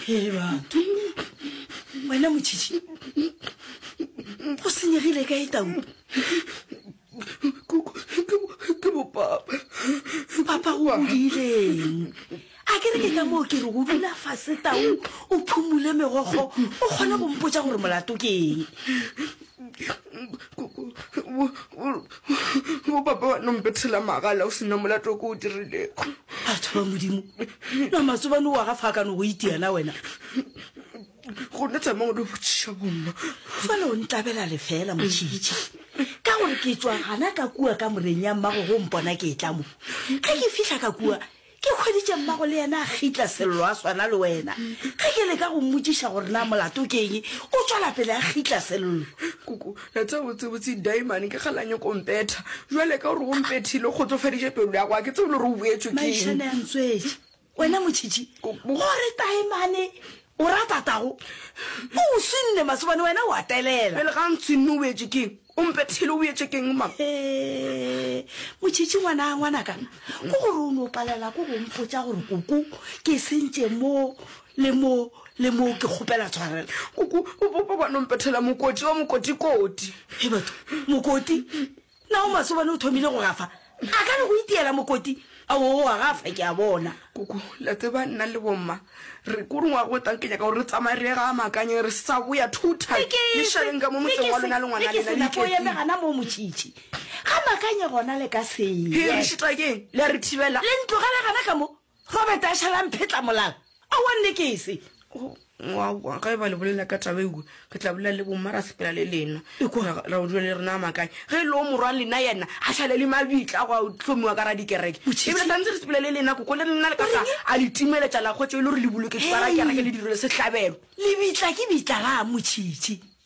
he batho wena motšhitšhi go senyegile ka e tau ke bopapa papa go godileng a ke re ke ka moo ke re go dula fase tau o phumule megokgo o kgone go mpotsa gore molato ke eng bo papa wa nompethela magala o sena molato ko o dirileko batho ba modimo na matsobane o wa ga fa ka no go itiana wena go ne tsamang di botšiša bomma fale o ntlabela lefela motšhitšhi ka gore ke tswa gana ka kua ka moreng ya mmago go mpona ke e tlamo ge ke fihla ka kua Ke hweditše mmago le yena a gitla Sello a swana le wena. Ge ke leka go mmotšiša gore na molato ke eng, o tšwela pele a gitla Sello. Koko, ya tseba botsebotse Daimane ke kgale a nyoko go mpetha. Bjale ka gore o mpethile o kgotsofaditše pelo ya go, ga ke tsebe le gore o boetšwe ke eng. Maišane a ntswetše. Wena motšhitšhi, gore Daimane o rata tago, o o swinne masobane wena o a telela. Pele ga a ntshwinne o boetšwe ke eng? O mpethile o boetše keng mang? Hee, Motšhitšhi ngwana, ngwanaka, ko gore o no palela ko go mpotša gore koko ke sentše mo le mo le mo ke kgopela tshwarelo. Koko, bo, bo, bo ba no mpethela mokoti wa mokotikoti. Hei batho, mokoti? Na o masobane o thomile go gafa? A ka re go itiela mokoti a o wa ga fa ke a bona. Koko, le a tseba nna le bomma re ko rongwa go tang ke nyaka gore re tsamaye re ye ga Makanye re sa boya two time. Ke ke Le šaleng ka mo motseng wa lona le ngwana lena le ko eme iketseng. gana mo motšitši. Ga Makanye gona le ka se. He re šita keng le a re thibela. Le ntlogele gana ka mo. Robert a šala mphetla molala. Aowa nne ke se. Oh, aowa, ga e ba le bolela ka taba ewe, re tla bolela le bomma ra sepela le lena. Ekwa ra, ra o dula le rena a makae. Ge e le o morwa lena yena a šale le mabitla go a hlomiwa ka ra dikereke. Ebile sa ntse re sepela le lena koko le rena le ka sa a le timeletša la kgwetša e le gore le boloketšwe ka ra kereke le direlo sehlabelo. Lebitla ke bitla ga a motšhitšhi.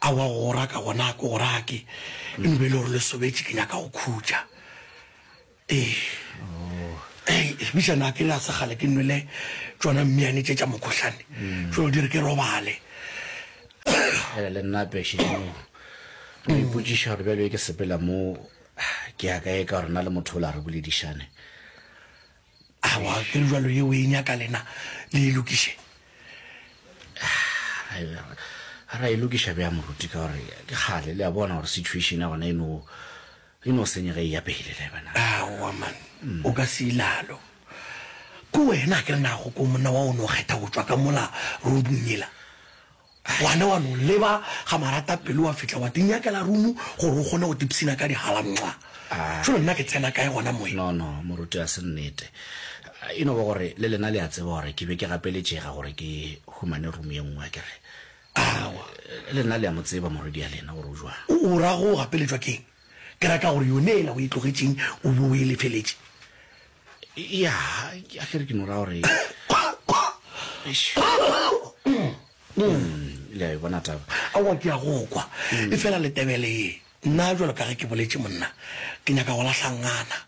Aowa go go raka gona a ke go rake eno be e le gore le sobetše ke nyaka go khutša ee ei lebisa na ke le a segale ke nwele tsona mmeane tše tša mokgohlane tšeo di re ke robale ele le nna pešeneng re ipotšiša gore bjalo e ke sepela mo ke ya kae ka gore na le motho o la re boledišane Awa, ke re jwalo ye o e nyaka lena le e lokiše. A ra e lokiša bjang moruti ka gore ke kgale le a bona gore situation ya gona e no e no senyega e ya pele le bana. Awa man, o ka se ilalo. Ke wena a ke re nago ko monna wa o no kgetha go tšwa ka mola roadung yela. Ngwana wa no leba ga marata pelo wa fihla wa tinyakela room gore o kgone go tipsina ka dihala mwa. Jalo nna ke tsena kae gona moe? No no moruti ga se nnete. E no ba gore le lena le a tseba gore ke be ke gapeletšega gore ke humane room ye nngwe akere? Aowa. Le lena le a mo tseba morwedi ya lena gore o jwang. O ra go gapeletšwa keng? Ke ra ka gore yone yela o e tlogetšeng o be o e lefeletše. ya a kere ke nora gore le a e bona taba awa ke ya go kwa e fela le tebele ye nna jalo ka ge ke boletše monna ke nyaka go lahlangana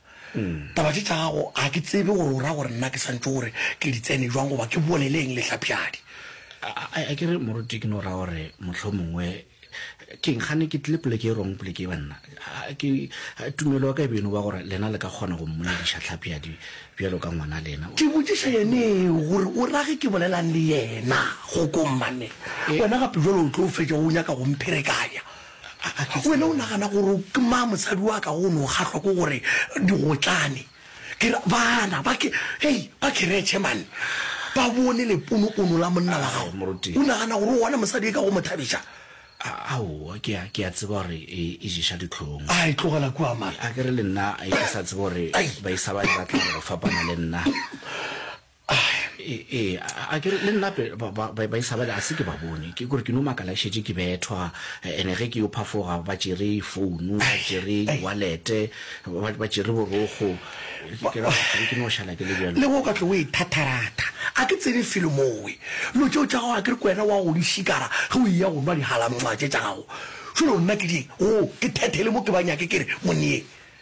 taba tše tša gago ga ke tsebe gore o ra gore nna ke santse gore ke di tsene jwang goba ke boleleng lehlapjadi a kere moruti ke no ra gore motlho mongwe Keng gane ke tlile poleke e wrong poleke e banna ke tumelo ya ka e be e no ba gore lena le ka kgona go mmolediša tlhapiadi bjalo ka ngwana lena Ke botšiša yeneo gore o rage ke bolelang le yena go ko mmane Eh. wena gape jalo o tlo fetša o nyaka go mpherekanya A- a ke tsebe. wena o nagana gore ke ma mosadi wa ka go no kgahlwa ko gore digotlane Ke re, Bana ba ke, hei, ba keretšhe, man, ba bone leponopono la monna wa gago. Moruti. O nagana gore o gona mosadi e ka go mo thabiša? A- Aowa, ke a, ke a tseba gore e, e ješa dihlong. A e tlogela kua, man. A ke re le nna, a e ke sa tsebe gore Ai. baisa ba e batla gore go fapana le nna. Ee, a ke le nnape baisabale a se ke ba bone ke gore ke no makala ke šetše ke bethwa ene ge ke yo phafoga ba tšere founu ba tšere walete ba tšere borokgo ke ra gore ke no šala ke le bjalo le go ka tlo o e thatharatha a ke tsebe felo mowe lo tšeo tša gago a ke re kwena wa go di šikara ge o iya go nwa dihalamngwa tše tša gago šolo nna ke di go ke thethele mo ke ba nyake ke re monneyeng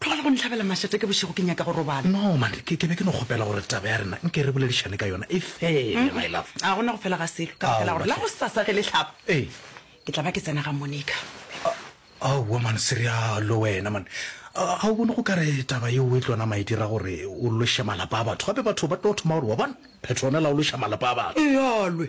Tlogela go nhlabela mašata ke bošego, ke nyaka go robala. No, mane, ke, ke be ke no kgopela gore taba ya rena nke re boledišane ka yona e fele, my love. Ga go na go fela ga selo, ka baka la gore la gosasa ge le hlaba, Ee. ke tla ba ke tsena ga Monica. Aowa, mane, se realo wena, mane. Ga o bone go ka re taba yeo e tlo nama e dira gore o loše malapa a batho? Gape batho ba tlo thoma gore, Wa bona, Petronella o loša malapa a batho. Ealwe,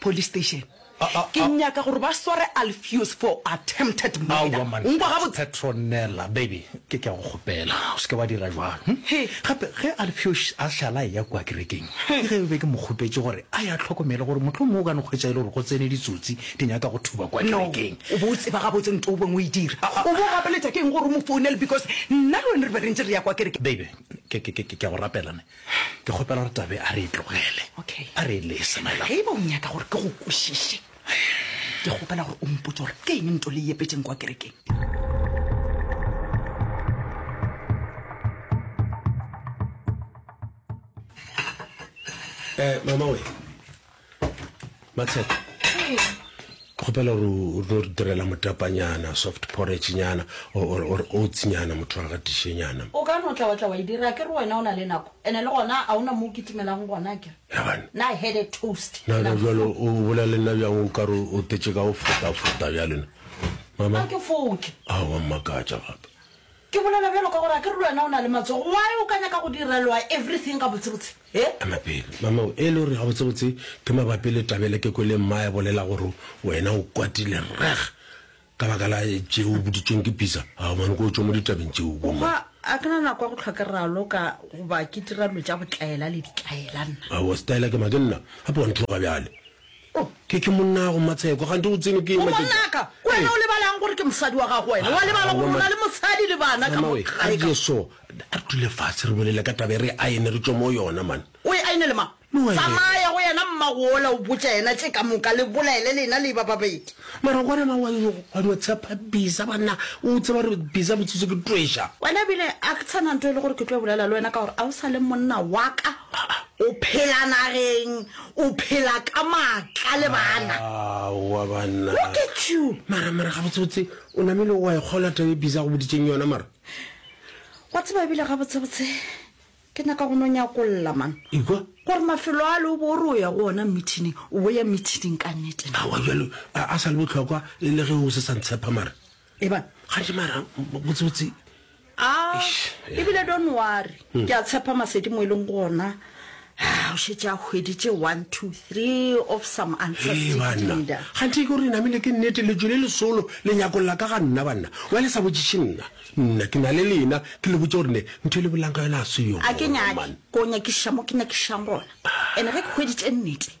Police station. Ke nyaka gore ba sware Alpheus for attempted murder. Aowa mantšha. O nkwa gabotse? Petronella, baby, ke ke a go kgopela. O se ke wa dira bjalo. Hm? He. Gape ge Alpheus a šala a eya kua kerekeng, ke ge be ke mo kgopetše gore a ye a tlhokomele gore mohlomongwe o ka no hwetša e le gore go tsene ditsotsi di nyaka go thuba kua No. kerekeng. O be o tseba gabotse nto o beng o e dira. O bo o gapeletša ke eng gore o mo founele because nna le wena re be re ntše re ya kua kerekeng? Baby, ke ke ke ke a go rapela ne. Ke kgopela gore Tabe a re e tlogele. Okay. A re e lese, my love. Ge e ba o nyaka gore ke go kwešiše, ke kgopela gore o mpotse gore ke eng nto le e epetšeng kwa kerekeng. Eh, mama we. matshepo kgopela gore o tlo direla motapanyana soft porridge nyana or or oats nyana motho wa gatiše nyana o ka no tla wa tla wa e dira ke re wena o na le nako ene le gona a ona mo o kitimelang gona ke Yabana. na I had a toast na na jalo o bolela le nna bjang o ka re o tetse ka go fota fota bjalena mama a ke foke awa mmakatša gape Ke bolela bjalo ka gore a ke re le wena o na le matsogo, why o ka nyaka go direlwa everything gabotsebotse? He? Ema pele, mama o e le gore gabotsebotse ke mabapi le tabele ke kwele mmae bolela gore wena o kwatile reg ka baka la tše o boditšweng ke Pizza. Ao mane ko o tšwe mo ditabeng tšeo O kua. a ke na nako ya go hlwa ke raloka goba ke dira dilo tša botlaela le ditlaela nna. Aowa Styla ke ma ke nna gape wa nthloga bjale. Oh, ke, ke monnago Matsheko, kgante o tsene ke ema ke tla. Ngwanaka, ke wena o lebalang gore ke mosadi wa gago wena? Wa lebala gore o na le mosadi le bana ka mo gae ka? A je so, a re dule fatshe re bolele ka taba e re aene re tšwe mo yona man. O e aenele mang? Tsamaya go yena mmago ola o botša yena tše ka moka le bolaele lena le eba ba babedi. Mara gore ma wa wa no tshepa Bisa banna, o tseba gore Bisa botsitso ke tšweša. Wena ebile a ke tshana nto e le gore ke tlo bolela le wena ka gore a o sa le monna wa ka, o phela nageng. O phela ka maatla le bana. Aowa banna. Look at you! Mara, mara, gabotsebotse, o namile wa e kgolwa taba e busy a go boditseng yona, mara? Wa tseba ebile gabotsebotse, ke nyaka go no nyakolla, man. Ekwa? Gore mafelo a le o bo o re o ya go ona meetingeng, o bo ya meetingeng ka nnete na? Aowa, bjalo a, a sa le bohlokwa e le ge o se sa ntshepa, mara? e bana ga je mara botsebotse a e bile don't worry hmm. ke a tshepa masedi mo e leng gona o šetse a hweditše one two three of some answersbanna gante ke gore namele ke nnete lejo le lesolo le nyakong la ka ga nna banna wa le sa botšiše nna nna ke na le lena ke le botse gore ne ntho e le bolang ka yona a se yone a ke nyake ko nyakiša mo ke nyakišang gona and-e ge ke hweditše nnete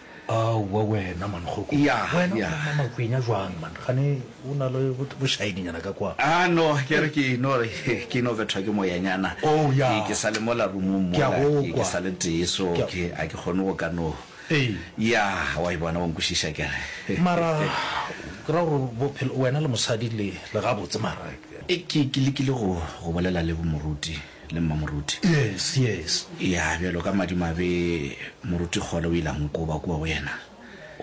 Aowa wena man kgoko. Yah, Wena o yah. nwa makwenya jwang man? Kgane o na le bo- bošaedinyana ka kwa. Ah, no, ke re ke no re, ke ino bethwa ke moyanyana. Oh, yah. Ke, ke sa le mola roomong Ke a mola, go ke, ke kwa. sa le tee, so Ke a- ke, a ke kgone go ka no. Ee. Yah, wa e bona, wa nkwešiša ke re. Mara, ke ra gore bophelo, wena le mosadi le, le gabotse mara. Ke, ke lekile go, go bolela le bo moruti. Le mma Moruti? Yes, yes. Ya, bjalo ka madimabe, Moruti Kgole o ile a nkoba kua go yena.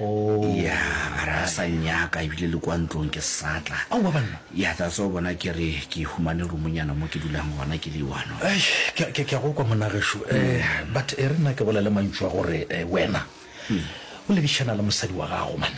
Oh. Ya, a re a sa nnyaka, ebile le kua ntlong ke sa tla. Aowa banna! Ya, that's all, bona ke re ke humane roomonyana mo ke dulang gona, ke le one of. Eish, ke a, ke a, ke a go kwa monna gešo. Eh, but e re nna ke bolele mantšu a gore, eh, wena. O lebišana le mosadi wa gago man.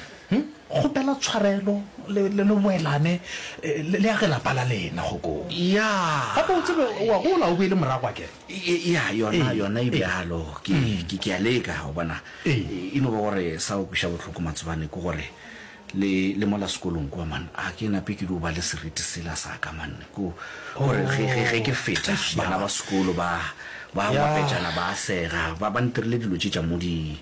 Kgopela tshwarelo le le le boelane le le age lapa la lena go ko. Ya. Gape o tsebe o a gola o boele morago a ke. Ya yona yona e bjalo ke ke ke a leka o bona. E no ba gore sa go kwiša bohloko Matsobane ke gore Le, le mola sekolong kua, man, a ke nape ke dio ba le seriti sela sa ka, man, ko, gore ge, ge, ge ke feta, Eish, ya. bana ba sekolo ba, ba a Ya. ngwapetšana, ba a sega, ba, ba ntirile dilo tše tša mo di,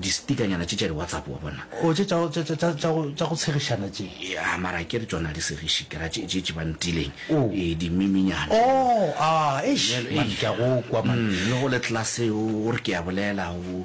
di-stickernyana tše tša di-WhatsApp, wa bona. O, tše tša, tša, tša, tša, tša go, tša go tshegišana tše. Ya, mara akere tšona ha di segiše, ke ra tše, tše, tše ba ntileng, O. ee, di-meme-nyana. O, a, eish, Bjale, man, eish. ke a go kwa, man. Mm, le go le class, o, o re ke a bolela, o,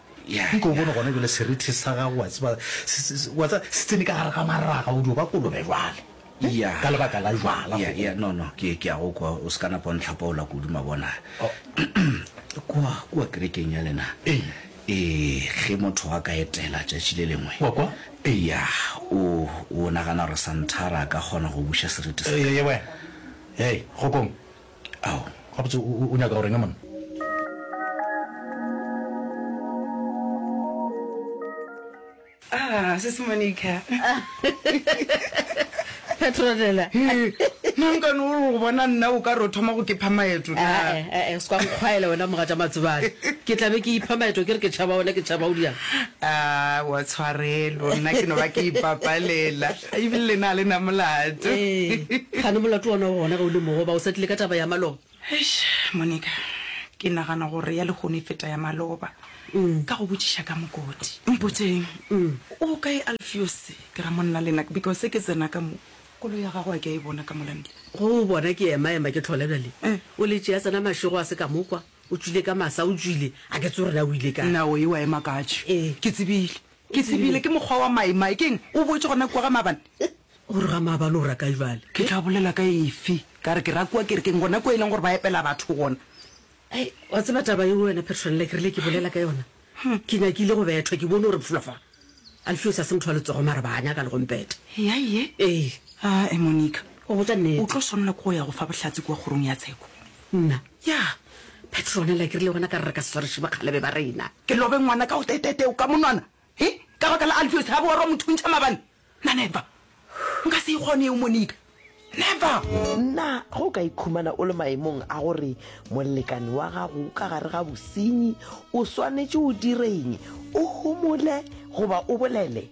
Yeah, Nko o bone gona jale serethe sa gago wa tseba se- se- se- wa tseba, se tsene ka gare ga maraga o dio ba kolobe jale Eh, Yeah. ka lebaka la jwala Yeah, yeah, no, no, ke ke a go kwa o se ka napa o ntlhapaola kudu mabona Oh. kwa kwa kerekeng ya lena Ee. ee ge motho a ka etela tšatši le lengwe Wa kwa? eya o o nagana gore santhara a ka kgona go buša seriti sa Ee, ye wena hei kgokong Ao, gabotse o, o, o nyaka go reng monna? Ah, Sis Monica. Petronella. Hee, nankane o re go bona nna o ka re o thoma go ke pha maeto na? Ah, eh, eh, eh, se kwa nkgwaela wena moga tša matsebane. Ke tla be ke ipha maeto ke re ke tšhaba wena ke tšhaba o diang. Ah, wa tshwarelo, nna ke no ba ke ipapalela. E bile le na le na molato. Ee, gane molato wona o gona ge o le mogoba, o sa tlile ka taba ya maloba. Eish, Monica, ke nagana gore ya lehono e feta ya maloba. Ka go botšiša ka mokoti. Mpotseng, o kae Alfios ke ra monna le nna because ke tsena ka mo, koloi ya gagwe a ke a e bona ka mola ntle. Go o bona ke ema ema ke tlhola bjale o le tšea tsena mašego a se ka mo kwa, o tšwile ka masa, o tšwile a ke tse o rena o ile kae. Nna o ewa ema katše. Ee. Ke tsebile. Ke tsebile ke mokgwa wa maimai. Ke eng? O boetše gona kua ga maabane? O re ga maabane o ra kae bjale? Ke tla bolela ka efe? Ka re ke ra kua kerekeng, gona kua e leng gore ba epela batho gona. Hei, wa tseba taba yeo wena Petronella, ke rile ke bolela ka yona. Ke nyakile go bethwa, ke bone gore pfulafa. Alfios a se motho wa letsogo mara ba nyaka le go mpeta. Eya ye? Ee. Aa, Monica. O botša nnete. O tlo swanela ke go ya go fa bohlatse kua kgorong ya tsheko. Nna, Ya, Petronella, ke rile gona ka re re ka se sware šiba kgalebe ba rena. Ke lobe ngwana ka go teteeteo ka monwana, he, ka baka la Alpheus, ga boorwa motho o ntšha mabane. Nna, Never! Nka se e kgone eo, Monica. Never! Nna, Ge o ka ikhumana o le maemong a gore molekane wa gago o ka gare ga bosenyi, o swanetše o direng? O homole goba o bolele?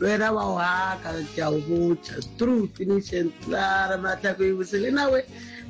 Lwena wa o haka ke a o botša true finish and clara matlhako e bose le nawe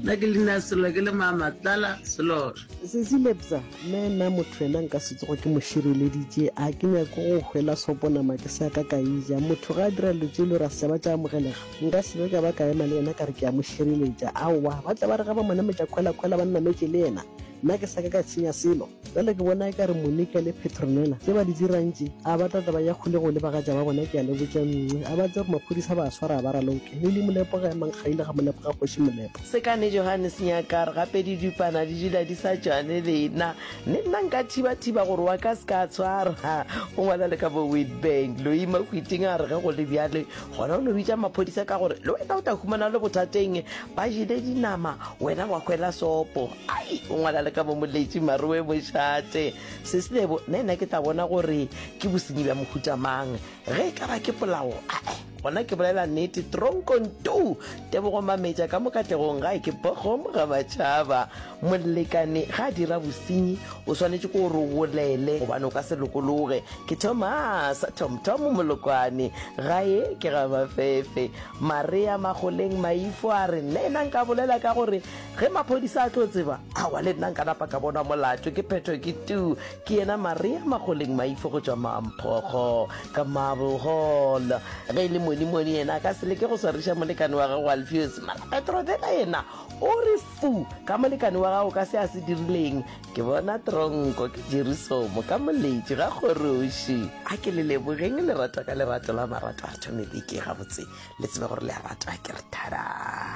nna ke lena selo ke le mama tlala selora sesi lebza mme nna motho ena nka se tsogo ke mo šireleditše a ke nyako go hwela soponama ke sa ka ka ija motho ga a dira dilo tše e le gore a se ba tša amogelega nka se be ka ba ka ema le yena ka re ke a mo šireletša aowa ba tla ba re ga ba mo nametša kgwelakgwela ba nnametše le yena nna ke sa ka ka tshenya selo Bjale ke bona eka re Monica le Petronella tše ba di dirang tše, a ba tla tla ba ya kgolegong le bagatša ba bona, ke a le botša Mnce, a ba tsebe gore maphodisa a ba swara a ba raloka, Lily Molepo ga emang kgaile ga Molepo ga kgoši Molepo. Sekane Johannes Nyakar, gape didupana di dula di sa tšwane le nna, mme nna nka thiba-thiba gore wa ka a se ka a tshwarwa, o ngwala le ka bo Witbank. Louis Mahwiting a re ge go le bjale, gona o no bitša maphodisa ka gore le wena o tla humana o le bothateng, ba jele dinama, wena wa hwela sopo. Ai, o ngwala le ka mo moletši maroe mošate. Seslebo, na nna ke tla bona gore ke bosenyi bja mohuta mang? Ge e ka ba ke polao, ae, gona ke bolela nnete, tronkong tu! Tebogo Mametša, ka mo katlegong gae ke bogom ga matšhaba. Molekane ga a dira bosenyi, o swanetše ko gore o bolele gobane o ka se lokologe. Ke Thomas, Thomthom Molokwane, gae ke ga Mafefe. Marea Magoleng Maifo a re, Nna nka bolela ka gore Ge maphodisa a tlo tseba, awa le nna nka napa ka bonwa molato, ke phethwe ke tuu, ke yena Maria Magoleng Maifo go tšwa Mamphogo, ka Marble Hall. Ge e le monimoni yena a ka se leke go swariša molekane wa gagwe Alfios, mara Petrovela yena o re fu ka molekane wa gagwe ka se a se dirileng. Ke bona tronko, ke Jerisomo, ka moletši, ga kgoroši. A ke le lebogeng lerato ka lerato la marato, Artyom Ibiki, gabotse le tsebe gore le a ratwa, ke re thadaa.